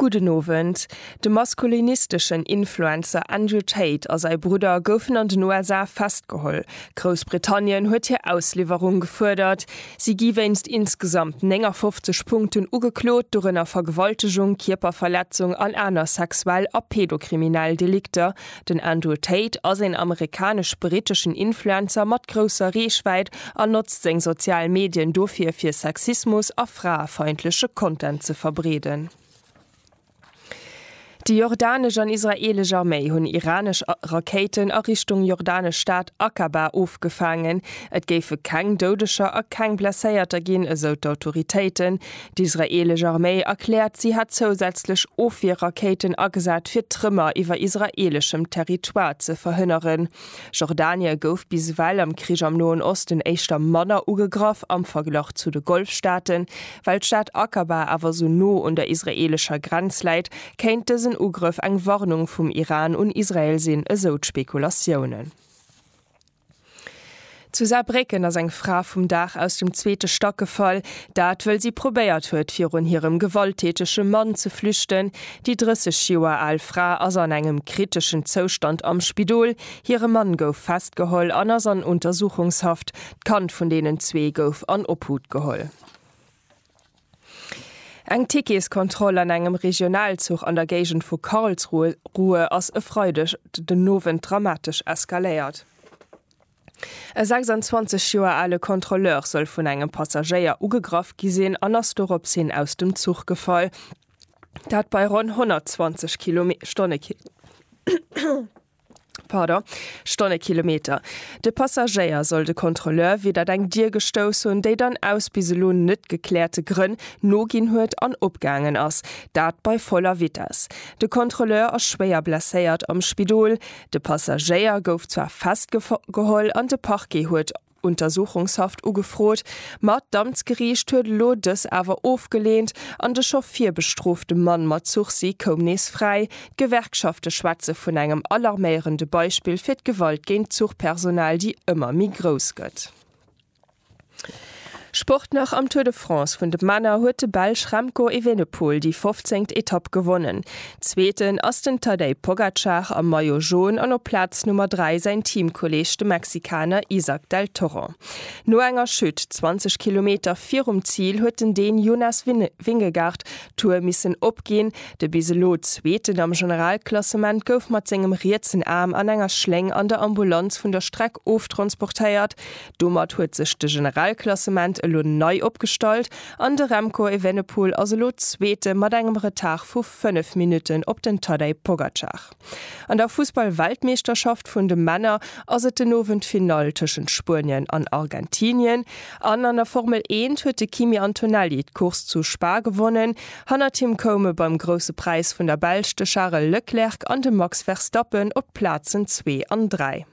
Gudden Owend. De maskulinisteschen Influencer Andrew Tate a säi Brudder goufen an den USA festgeholl. Groussbritannien huet hir Ausliwwerung gefuerdert. Si gi wéinst insgesamt 59 Punkten ugeklot, dorënner Vergewaltegung, Kierperverletzung an aner sexuell a pedokriminell Delikter. Den Andrew Tate ass een amerikanesch-britteschen Influencer mat grousser Reechwäit an notzt seng sozial Medien dofir fir Sexismus a fraefeindleche Content ze verbreeden. Déi jordanesch an israeelesch Arméi hunn iranesch Rakéiten a Richtung jordanesch Stad Aqaba ofgefaangen. Et géife keng Doudeger a keng Blesséierter ginn, esou d'Autoritéiten. D'israeelesch Arméi erkläert, si hätt zousätzlech Ofwierrakéiten agesat, fir d'Trëmmer iwwer israeeleschem Territoire ze verhënneren. Jordanie gouf bis ewell am Krich am Noen Osten éischter manner ugegraff am Verglach zu de Golfstaaten. Well d'Stad Aqaba awer esou no un der israeelescher Grenz läit, kéint dësen Ugrëff eng Warnung vum Iran un Israel sinn, esou d'Spekulatiounen. Zu Saarbrécken ass eng Fra vum Daach aus dem zweete Stack gefall. Dat wëll si probéiert huet, virun hirem gewalttätege Mann ze flüchten. Déi 30 Joer al Fra ass an engem kriteschen Zoustand am Spidol. Hire Mann gouf festgeholl an ass an Untersuchungshaft. D'Kand vun deenen zwee gouf an Obhut geholl. Eng Ticketskontroll an engem Regionalzuch an der Géigend vu Karlsruhe ass e Freideg den Owend dramatesch eskaléiert. E 26 Joer ale Kontrolleur soll vun engem Passagéier ugegraff gi sinn an ass doropshin aus dem Zuch gefall, dat bei ronn 120 km/h. Pardon, Stonnekilometer. De Passagéier soll de Kontrolleur widder eng Dier gestouss hunn, déi dann aus bis elo net gekläerte Grënn noginn huet an opgaangen ass, dat bei voller Vitess. De Kontrolleur ass schwéier blesséiert am Spidol. De Passagéier gouf zwar festgeholl an de Parquet huet Untersuchungshaft ugefrot, ma d'Amtsgeriicht huet elo dës awer ofgeleent an de scho virbestrofte Mann mat Sursis koum nees fräi. D'Gewerkschafte schwätze vun engem alarméierende Beispill fir d'Gewalt géint d'Zuchpersonal, déi ëmmer méi grouss gëtt. Sport nach, Am Tour de France vun de Männer huet de Belsch Remco Evenepoel déi 15. Etapp gewonnen. Zweeten ass den Tadej Pogacar am Maillot Jaune an op Plaz Nummer 3 säin Teamkolleeg de Mexikaner Isack Del Toro. No enger Chute 20 Kilometer virum Zil huet den Dän Jonas Vingegaard d'Tour missen opginn. De bis elo Zweeten am Generalklassement gouf mat sengem rietsen Aarm an enger Schléng an der Ambulanz vun der Streck oftransportéiert. Domat huet sech de Generalklassement elo nei opgestallt. An de Remco Evenepoel ass elo Zweete mat engem Retard vu 5 Minutten op den Tadej Pogacar. An der Fussball-Weltmeeschterschaft vun de Männer ass et den Owend d'Finall tëschent Spuenien an Argentinien. An an der Formel Eent huet de Kimi Antonelli d'Course zu Spa gewonnen. Hannert him koume beim Grousse Präis vun der Belsch de Charel Leclerc an de Max Verstappen op d'Plazen zwee an dräi.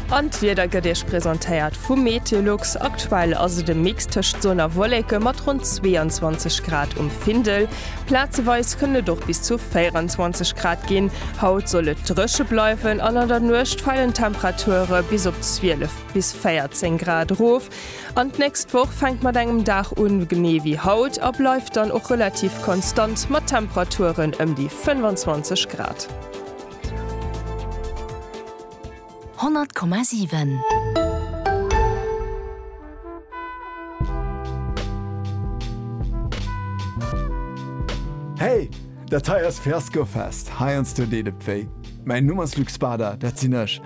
An d'Wieder gëtt Iech presentéiert vum Meteolux. Aktuell ass et e Mix tëscht Sonn a Wolleke mat ronn 22 Grad um Findel. Plazeweis kënnen et och bis zu 24 Grad ginn. Haut soll et dréche bleiwen an an der Nuecht falen d'Temperature bis op 12 bis 14 Grad erof. An d'nächst Woch fänkt mat engem Dag un, genee wéi haut, a bleift dann och relativ konstant mat Temperaturen ëm déi 25 Grad. 100,7. Hey! Dat hei ass Fiasco Fest, heiansdo deet et wéi. Mäin Numm ass Luc Spada, dat sinn ech.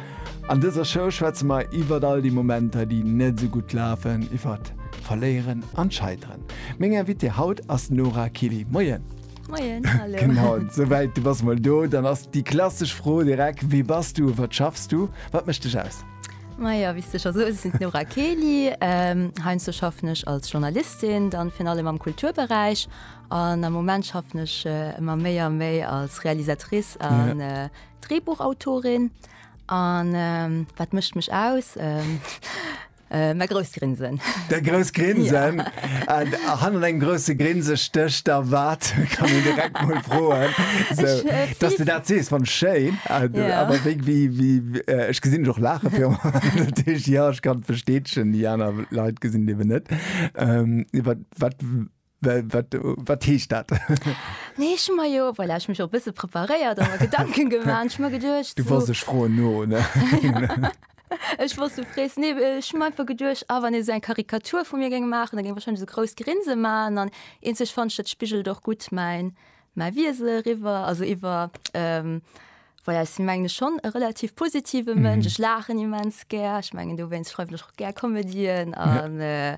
An dëser Show schwätze mer iwwert all déi Momenter, déi net esou gutt lafen, iwwert Verléieren an d'Scheiteren. Meng Invitée haut ass d'Nora Kiely. Moien! Moien, hallo! Genau, souwäit, du bass mol do. Dann ass déi klassesch Fro direkt, Wie bass du? Wat schaffs du? Wat mécht dech aus? Majo, wéi s du scho soos, ech sinn d'Nora Kiely. Heiansdo schaffen ech als Journalistin, dann virun allem am Kulturberäich. An am Moment schaffen ech ëmmer méi a méi als Realisatrice an Drehbuchautorin. An wat mécht mech aus? Mäi grousst Grinsen. Däi grousst Grinsen? Hannert engem grousse Grinse stécht da wat? Kann een direkt mol froen, dass de dat sees. Fand ech schéin. Awer wéi, ech gesinn dech och laache virun allem, dat heescht, jo, ech kann d'Versteetchen. Déi aner Leit gesinn et eeben net. Iwwer wat Wat heescht dat? Nee ech hu mer jo well ech mech op bësse preparéiert a Gedanken geman ech mer geduercht. Du wars ech froen no. Ech wor du frees ne ech mei ver geduerch a wann e se eng Karikatur vu mir geng maachen, da géng war schon se grouss Grinse man an een sech fanch dat Spigel doch gutt mein mei Wiese riwwer also iwwer. Ähm, Well ja, si mengen schon e relativ positive Mënsch, mhm. ech lachen immens ger, ech mengen du wéinst schreiwen ech och ger Komedien an. Ja. Äh,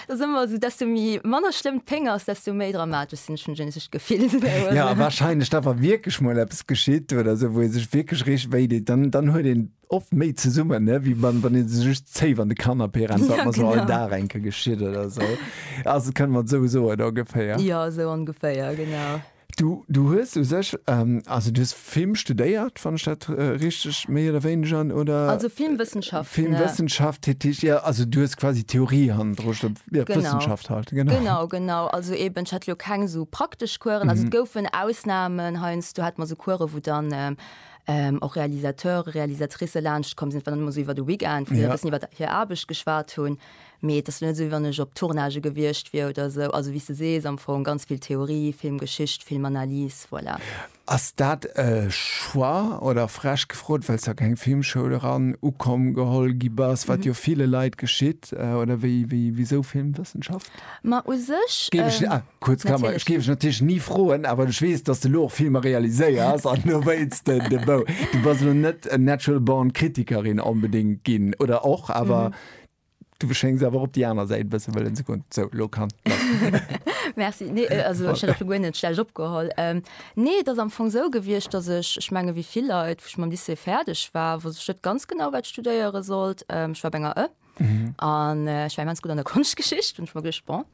Dass ëmmer esou, desto méi, manner schlëmm d'Péng ass, desto méi dramatesch sinn, ech hunn just dat Gefill. Jo, a warscheinlech da, wa wierklech mol eppes geschitt oder esou, wou ee sech wierklech richteg wéi deet, dann, dann huet een oft méi zesummen, ne, wéi wann, wann ee sech just zéif an de Canapé rennt, wat mer esou all Dag enke geschitt oder esou. Also kënne mer et esou soen, ongeféier? Jo, esou ongeféier, genau. Du, du hues u sech, also du hues Film studéiert, wann ech dat richteg méi oder wéineger, oder? Also Filmwëssenschaften. Filmwëssenschaft, dat heescht, ja, also du hues quasi Theorie hannendru sto, jo, Wëssenschaft halt, genau. Genau, genau, genau. Also eeben, ech hat elo keng esou praktesch Coursen, mhm, also et goufen Ausnahmen, heiansdo hat mer esou Coursen, wou dann och Realisateure, Realisatricë laanschtkomm sinn, wat dann ëmmer esou iwwer de Weekend, wou se e bëssen iwwer hir Aarbecht geschwat hunn. Mee et ass jo net esou, wéi wann ech op Tournagë gewiescht wier oder esou. Also, wéi s de sees, am Fong ganz vill Theorie, Filmgeschicht, Filmanalys, voilà. Ass dat e Choix oder, frech gefrot, well s a keng Filmschoul eran ukomm, geholl gi bass, wat jo ville Leit geschitt? Oder wéi, wisou Filmwëssenschaft? Ma u sech, Kuerz Klammer, ech géif ech natierlech ni froen, awer ech weess, dass s de elo och Filmer realiséiers an do wéilts de de Bou. Du bass elo net natural born Kritikerin onbedéngt ginn, oder och? Awer Du schéngs awer op déi aner Säit e bësse wëllen ze goen. Sou, lo kann Merci. Nee, äh, also ech hätt och lo guer net schlecht opgeholl. Ähm, nee, et ass am Fong sou gewiescht, dass ech, ech menge wéi vill Leit, wou ech mam Lycée fäerdeg war, wosst ech net ganz genau, wat ech studéiere sollt. Ähm, ech war op enger ë, an äh, ech war immens gutt an der Konschtgeschicht an ech hu mer geduecht, bon,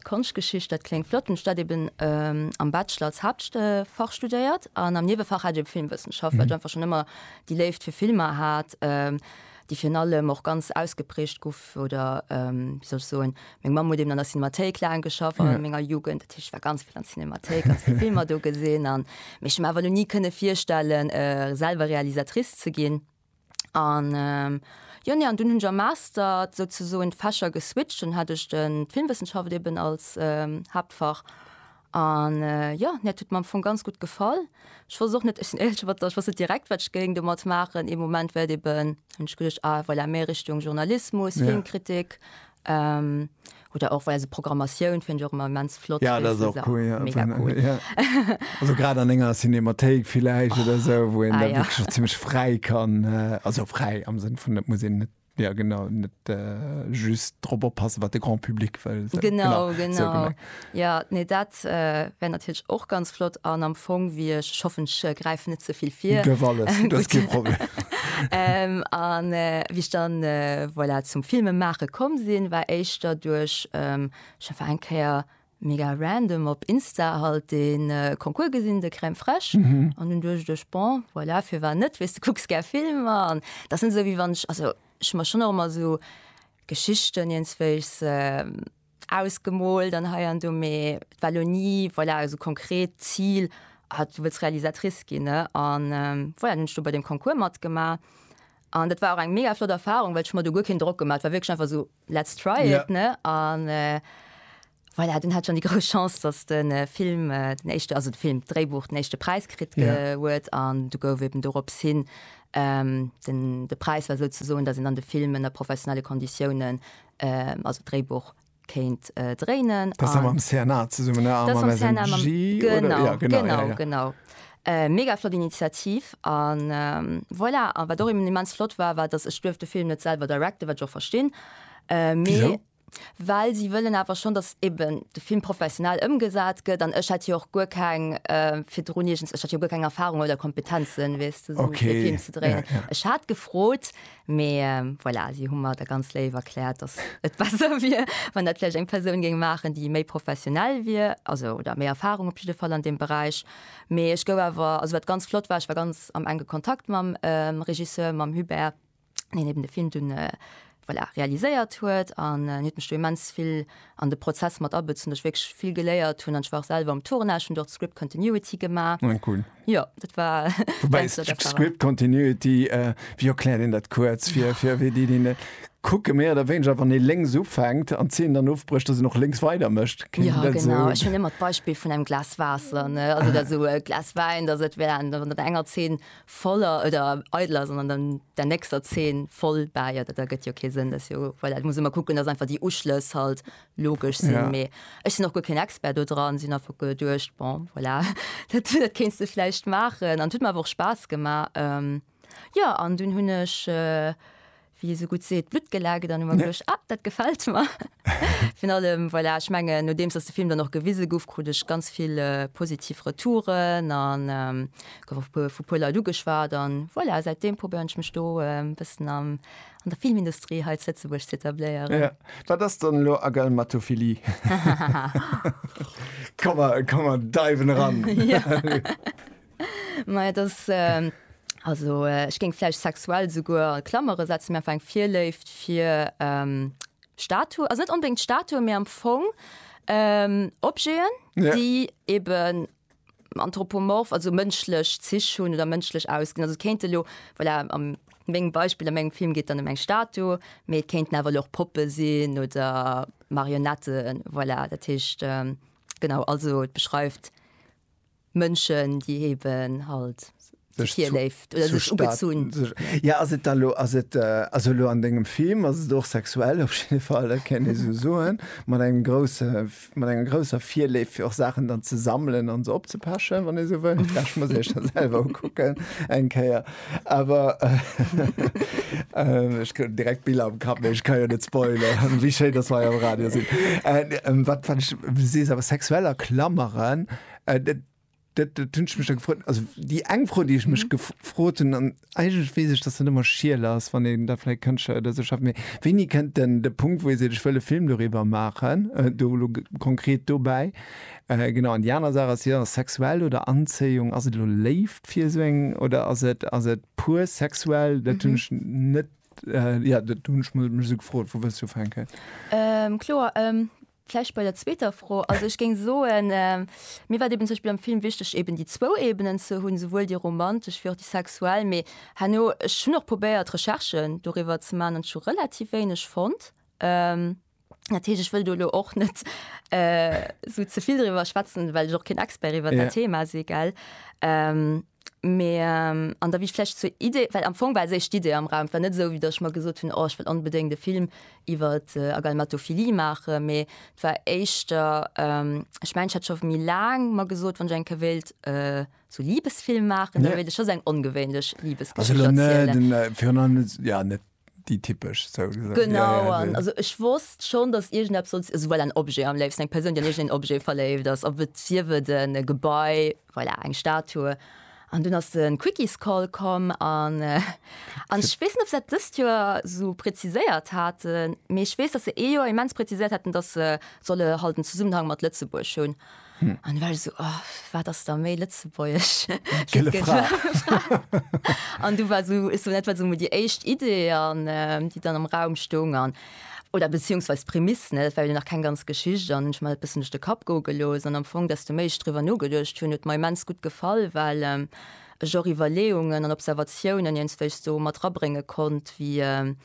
Konschtgeschicht, dat kléngt flott. Hunn ech dat eben ähm, am Bachelor als Haaptfach studéiert an am Niewefach hat ech eben Filmwëssenschaft, well ech einfach schonn ëmmer déi Léift fir Filmer hat. Ähm, déi virun allem och ganz ausgeprägt guff oder ähm, wie soll ech soen, meng Mamm huet eben an der Cinemathéik laang geschafft an ja. menger Jugend, dat ich war ganz vill an Cinemathéik, ganz vill Filmer do gesinn an mech awer lo nie kënne virstellen äh, selber Realisatrice ze ginn an ähm, Jo nee, an dun hunn am Master sozusoen d'Fächer geswitcht, dann hat ech den d'Filmwëssenschaft eben als ähm, Haaptfach An jo, mir hat et mam Fong ganz gutt gefall. Ech wosst och net, ech sinn éierlech, iwwert dat, ech wosst net direkt, wat ech géing domat maachen. Ee Moment war et eben, hunn ech geduecht, ah voilà, méi Richtung Journalismus, Filmkritik oder och voilà, esou Programmatioun fénnt ech och ëmmer immens flott. Jo, dat ass och cool, mega cool. Also grad an enger Cinémathéik villäicht oder esou, wou een da wierklech och zimlech fräi kann, also fräi am Sënn vun, et muss een net. Ja genau, net just drop oppassen, wat de Grand Public wëll. Genau, genau. Ja, nee, dat wär natierlech och ganz flott an am Fong wéi ech, ech hoffen, ech gräifen net ze vill vir. Dierf alles, dat ass kee Problem. An wéi ech dann, voilà, zum Filme maache komm sinn, war éischter duerch, ech hu war eng Kéier Mega random op Insta halt den Concours gesin de Crème fraîche an hun duecht ech bon voilà firwat net wees de kucks gär Filmer an dat sin sou wéi wann ech also ech mach schon och emmer sou Geschichten ienzweegs ausgemoolt an hei an do mee et war lo ni voilà sou konkret Zil ah du wëlls Realisatrice gin ne an voilà hun ech do bei dem Concours matgemaach an dat war och eng mega flott Erfahrung well ech hu mer do guer keen Drock gemaach et war wierklech einfach sou Let's try it, yeah. ne an äh, voilà, den hat schon die gro Chance, dass den äh, Film äh, den echte also den Film Dréibuch den echte Preis krit yeah. huet an du gouf eben dorops hin ähm, den de Preis war so ze soen, dat sind an de Filmen der professionelle Konditionen äh, also Dréibuch kéint äh, dréinen. Das am CNA ze summen genau. Ja, genau. genau. Ja, ja. Mega flott Initiativ an voilà. A wat och immens flott war, war dass, ech duerf de Film net selwer directen, wat ech och verstinn, mee well si wëllen awer schonn, dass eben de Film professionell ëmgesat gëtt an ech hat jo och guer keng virdrun iergends, ech hat jo guer keng Erfahrung oder Kompetenzen, weess de, esou ee Film ze dréinen. Ech hat gefrot, mee voilà, si hu mer da ganz léif erkläert, dass et besser wier, wann dat vläicht eng Persoun géing maachen, déi méi professionell wier, also oder méi Erfahrung op jidde Fall an deem Beräich. Mee ech gouf awer, also wat ganz flott war, ech war ganz am enge Kontakt mam Regisseur, mam Hubert, deen eben de Film dunn, voilà, realiséiert huet an en huet mech do immens vill an de Prozess mat abezu, wou ech wierklech vill geléiert hunn. An ech war och selwer um Tournage, hunn do och d'Script Continuity gemaach. Ah, cool. Jo, dat war eng flott Erfahrung. Wobei Script Continuity, wéi erkläert een dat kuerz fir, fir wéi déi, déi net. Kucke mir da wéineger wann ee lénks ufänkt an d'Zeen dann ofbrécht, dass een och lénks weider mécht. Kéint een dat esou? Ja genau, ech hunn ëmmer d'Beispill vun engem Glas Waasser, ne, also oder esou e Glas Wäin, dass et wär an der enger Zeen voll oder eidel ass an an der nächster Zeen voll bäi, dat ergëtt jo kee Sënn. Dat ass jo, voilà, et muss ëmmer kucken, dass einfach déi Uschlëss halt logesch sinn. Ja. Mee ech sinn och guer keen Expert do dran, sinn einfach geduecht, bon, voilà, dat kéints de vläicht maachen an et huet mer awer och Spaass gemaach. Jo, an dunn hunn ech, wéi ee sou gutt seet, Blutt gelaakt an hu mer geduecht, Ah, dat gefält mer. Virun allem, voilà, ech mengen, nodeems datt de Film dann och gewise gouf, krut ech ganz vill positiv Retouren a gouf och vu puer Leit ugeschwat. An voilà, säit deem probéieren ech mech do e bëssen an der Filmindustrie hei zu Lëtzebuerg ze etabléieren. Wat ass dann elo Agalmatophilie? Komm mer deiwen eran. Mei das also ech géng vläicht sexuell souguer a Klamere setzen, mä einfach eng Virléift fir Statue, also net onbedéngt Statuen, mä am Fong Objeten, déi eeben anthropomorph, also mënschlech Zich hunn oder mënschlech ausgesinn. Also et kéinte elo, voilà, a mengem Beispill, a mengem Film geet et dann ëm eng Statue, mee et kéinten awer elo och Poppe sinn oder Marionetten, voilà. Dat heescht, genau, also et beschreift. Mënschen déi eben halt sech virléift oder sech ugezunn. Jo ass et da lo, ass et, also elo an dengem Film ass et och sexuell op jidde Fall, dat kéint ee sou soen, mat engem grousse, mat enger grousser Virléift fir och Saachen dann ze sammelen an se opzepechen, wann ee sou wëll, pechen muss ee sech dann selwer ukucken eng Kéier, awer ech krut direkt Biller am Kapp, mee ech ka jo net spoileren, wéi schéin datt mer jo am Radio sinn. Wat ech, du sees awer sexuell erklameren. Äh, dat, dat, dat hunn ech mech da gefrot. Also déi eng Fro, déi ech mech gef frot hunn, an eigentlech weess ech, dass dat ëmmer schiel ass, wann een da vläicht Kënschtler oder esou schafft, mee wéini kënnt denn de Punkt, wou ee seet, ech wëll e Film doriwwer maachen, äh, do elo konkret dobäi? Äh, genau. An déi aner Saach ass jo, sexuell oder Anzéiung, ass et elo Léift fir esou eng oder ass et, ass et pur sexuell? Dat hunn ech net, äh, jo, dat hunn ech mech esou gefrot, vu wéi ech ufänken. Ähm, kloer, ähm, Vläicht bei der zweeter Fro. Also ech géing soen, mir war et eben zum Beispill am Film wichteg eben déi zwou Ebenen ze hunn, souwuel déi romantesch wéi och déi sexuell. Mee herno, ech hunn och probéiert Recherchen doriwwer ze maachen an ech hu relativ wéineg fonnt. Dat heescht, ech wëll do elo och net esou ze vill doriwwer schwätzen, well ech och keen Expert iwwer dat Thema si, gell. Mee an da wier vläicht zur Idee, well am Fong war sech d'Idee am Raum, et war net esou wéi datt ech mer gesot hunn, oh ech wëll onbedéngt e Film iwwer Agalmatophilie maachen, mee et war éischter, ech mengen ech hat scho méi laang mer gesot, wann ech eng Kéier wéilt esou Libesfilm maachen, da wéilt ech scho sou eng ongewéinlech Libesgeschicht erzielen. déi typesch sou gesot. Genau, an also ech wosst schonn, datt iergendeppes sollt, also well en Objet am léifsten, eng Persoun, déi an iergend een Objet verléift ass, ob et sief et e Gebai, voilà, eng Statue. An dunn ass de Quickiescroll komm an an ech weess net, ob se dat dëst Joer esou präziséiert haten, mee ech weess, datt se ee Joer immens präziséiert haten, datt se solle halt en Zesummenhang mat Lëtzebuerg hunn. Hm. An well so oh, wat ass da méi Lëtzebuerg An du war so, so net so déi éischt Idee an ähm, déi dann am Raum stung an oder beziehungsweise Prämiss net well nach kein ganz Geschicht an ich mal bis nicht de Kap go gelos an am Fong dass du méich drüber no gedurcht hun et mei mens gut gefall weil ähm, ich auch Überleungen an Observationen jens wech so mat rabringe konnt wie ähm,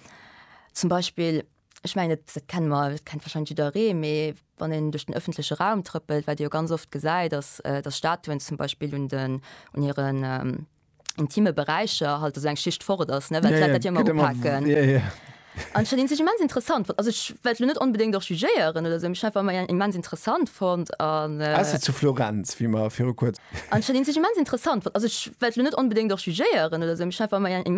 zum Beispiel Ech mengen et dat kenne mer, dat kennt wahrscheinlech jidderee, mee wann een duerch den ëffentleche Raum trëppelt, wat ee jo ganz oft gesäit, datt datt Statuen zum Beispill un den un hiren intime Beräicher halt esou eng Schicht fort ass, ne, well d'Leit dat jo ëmmer upaken. An ech hat een sech immens interessant fonnt, also ech well elo net onbedéngt och jugéieren oder esou, mee ech hat einfach ëmmer en immens interessant fonnt an. Ausser zu Florenz, wéi mer viru kuerz. An ech hat een sech immens interessant fonnt, also ech well elo net onbedéngt och jugéieren oder esou, mee ech hat einfach ëmmer en immens.